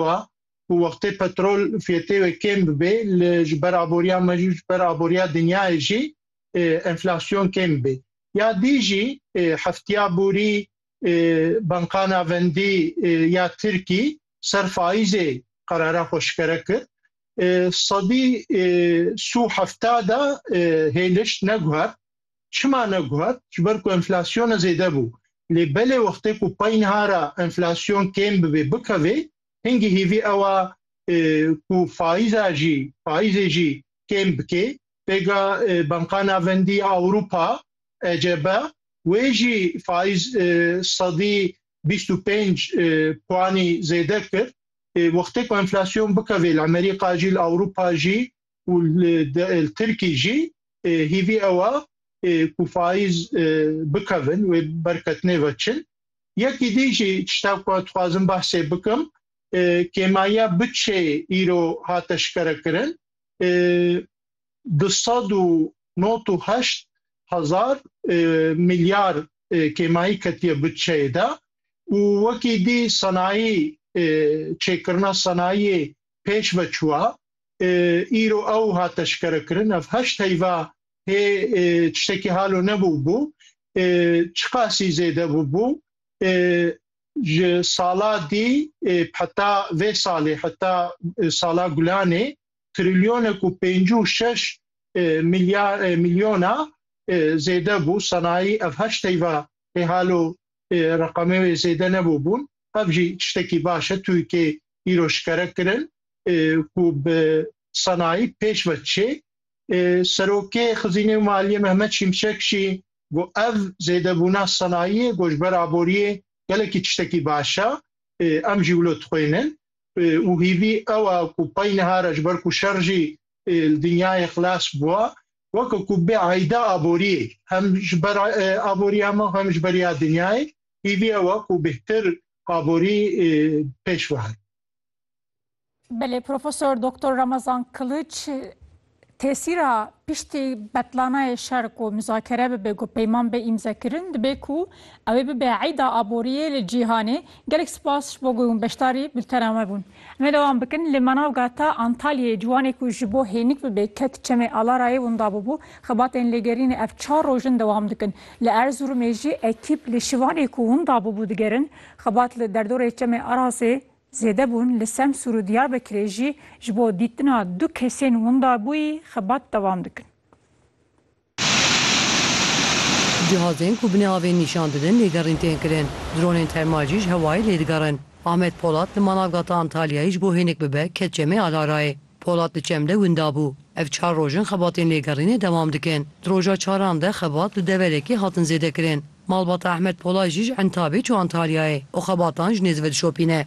bûya ku wextê petrol fiyetê wê kêm bibê li ji ber aboriya me jî ji ber aboriya dinyayê jî enflasyon kêm bê. Ya dî jî heftiya borî Banka Navendî ya Tirkî ser faîzê qerara xwe şikere kir. Sedî sû hefta de hêliş neguhert. Çima neguhat? Ji ber ku enflasyona zêde bû. Lê belê wextê ku paynha re enflasyon kêm bibê, bikevê, hingî hêvî ew a ku faîza jî, faîzê jî kêm bikê. Pêka Banka Navendî ya Ewropa, ECB, wê jî faîz sedî bîst û pênc puanî zêde kir. Wextê ku enflasyon bikevê li Amerîka jî, li Ewropa jî û li Tirkî jî hîvî ew a ku faiz bikevin wê berketinê ve çin. Yekî dî jî tişta ku ez dixwazim behsê bikim kêmayiya bütçeyê îro hat eşkere kirin du sed û not û heşt hezar milyar kêmayî ketiye bütçeyê de û wekî dî senayî çêkirina senayiyê pêş ve çûwa. Îro ew hat eşkerekirin. Ev heşt heyva hê tiştekî halo nebûbû. Çiqasî zêde bûbû. Ji sala dî heta vê salê heta sala gulanê trilyonek û pêncî û şeş milyona zêde bû. Sanayî ev heşt heyva hê halo reqamê wê zêde nebû bûn. Ev jî tiştekî baş e Tirkê îro şikere kirin ku bi sanayî pêş ve çê. Serokê Xizînê û Maliyê Mehmet Şimşek jî got ev zêdebûna sanayiyê ku ji ber aboriyê gelekî tiştekî baş e em jî wilo dixwînin û hîvî ew e ku pey nihare ji ber ku şer jî li dinyayê xilas bûye weke ku bê eyda aboriyê hem ji ber aboriya me hem ji ber ya dinyayê hîviya we ku bêhtir aborî pêş bihat. Belê Profesor Doktor Ramazan Kiliç tesîra piştî betlanayê şer ku muzakere bibe ku peyman bê îmzekirin dibê ku ew ê bibe eyda aboriyê li cîhanê. Gelek spas ji bo ku hûn beşdarî bultena me bûn. Me dewam bikin li Manavgata Antalyayê ciwanê ku ji bo hênik bibe ket çemê Alarayê winda bûbû. Xebatên lêgerînê ev çar roj in dewam dikin. Li Erzurumê jî ekîp li şivanê ku winda bûbû digerin. Xebat li derdorê çemê Arasê zêde bûn. Li Semsûr û Diyarbekirê jî ji bo dîtina du kesên winda bûyî xebat dewam dikin. Cihazên ku binê avê nîşan didin lêgerîn tên kirin, dronên termal jî ji hewayê lê digerin. Ahmet Polat li Manavgata Antalyayê ji bo hênik bibe ket Çemê Alarayê. Polat li Çem de winda bû. Ev çar roj in xebatên lêgerînê dewam dikin. Di roja çaran de xebat li deverê kê hatin zêdekirin. Malbata Ehmed Polat jî ji Entabê çû Antalyayê û xebatan ji nêz ve dişopîne.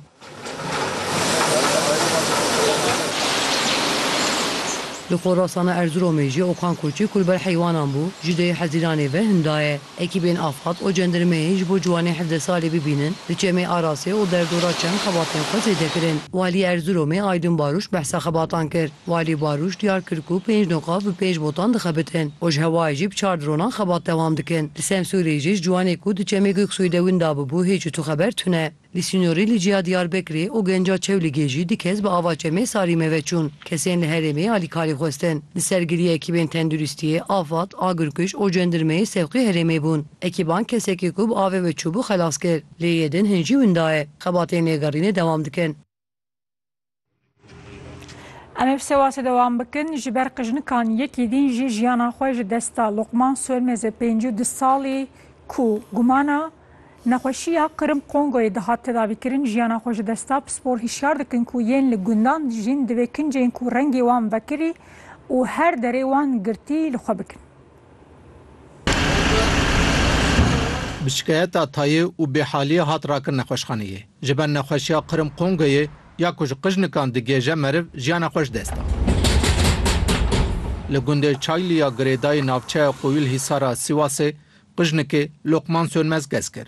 Li Xorasana Erziromê jî Okan Koçî ku li ber heywanan bû, ji dêyê Hezîranê ve hin daye. Ekîbên Afad û cendirmeyê ji bo ciwanê hevdeh salî bibînin, li Çemê Arasê û Derdora çend xebatên xwe zêde kirin. Walî Erziromê Aydûn Baruş behsa xebatan kir. Walî Baluş diyar kir ku pênc doqa bi pênc botan dixebitin û ji hewayê jî bi çar dronan xebat dewam dikin. Li Semsûrê jî ji ciwanê ku di çemê Goksoyê de winda bûbû hêj û tuxeber tune. Li sînorê li ciya Diyarbekirê û Genca Çewligê jî du kes bi ava çemê Sarîme ve çûn. Kesên li herêmê alîkarî xwestin. Li ser giriya ekîbên tenduristiyê, afad, agirkuj û cendirmeyê sewqê herêmê bûn. Ekîban kesekî ku bi avê ve çûbû xelas kir. Lê yê din hin jî winda ye. Xebatên lêgerînê dewam dikin. Em ê bi sewasê dewam bikin ji ber qijnikan yekî dîn jî jiyana xwe ji dest da. Luqman Sormez ê pêncî û du salî ku gumana nexweşiya Qirim Kongoyê dihat tedavîkirin jiyana xwe ji dest da. Pispor hişyar dikin ku yên li gundan dijîn divê kincên ku rengê wan vekirî û her derê wan girtî li xwe bikin. Bi şikayeta tayê û bêhaliyê hat rakin nexweşxaneyê. Ji ber nexweşiya Qrim Qongeyê ya ku ji qijnikan digihêje meriv jiyana xwe ji dest da. Li gundê Çaylî ya girêdayî navçeya Qoyûlhîsar a Sîwasê qijnikê Lokman Sönmez gez kir.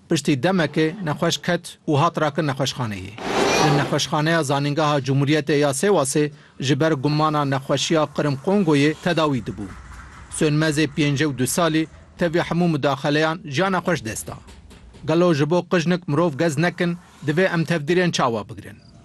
Piştî demekê nexweş ket û hat rakin nexweşxaneyê. Li Nexweşxaneya Zanîngeha Cumhuriyetê ya Sêwasê Ji ber gumana nexweşiya Qirm Kongoyê tedawî dibû. Sönmezê pêncî û du salî tevî hemû mudaxeleyan jiya nexweş dest da. Gelo ji bo qijnik mirov gez nekin, divê em tevdîrên çawa bigirin?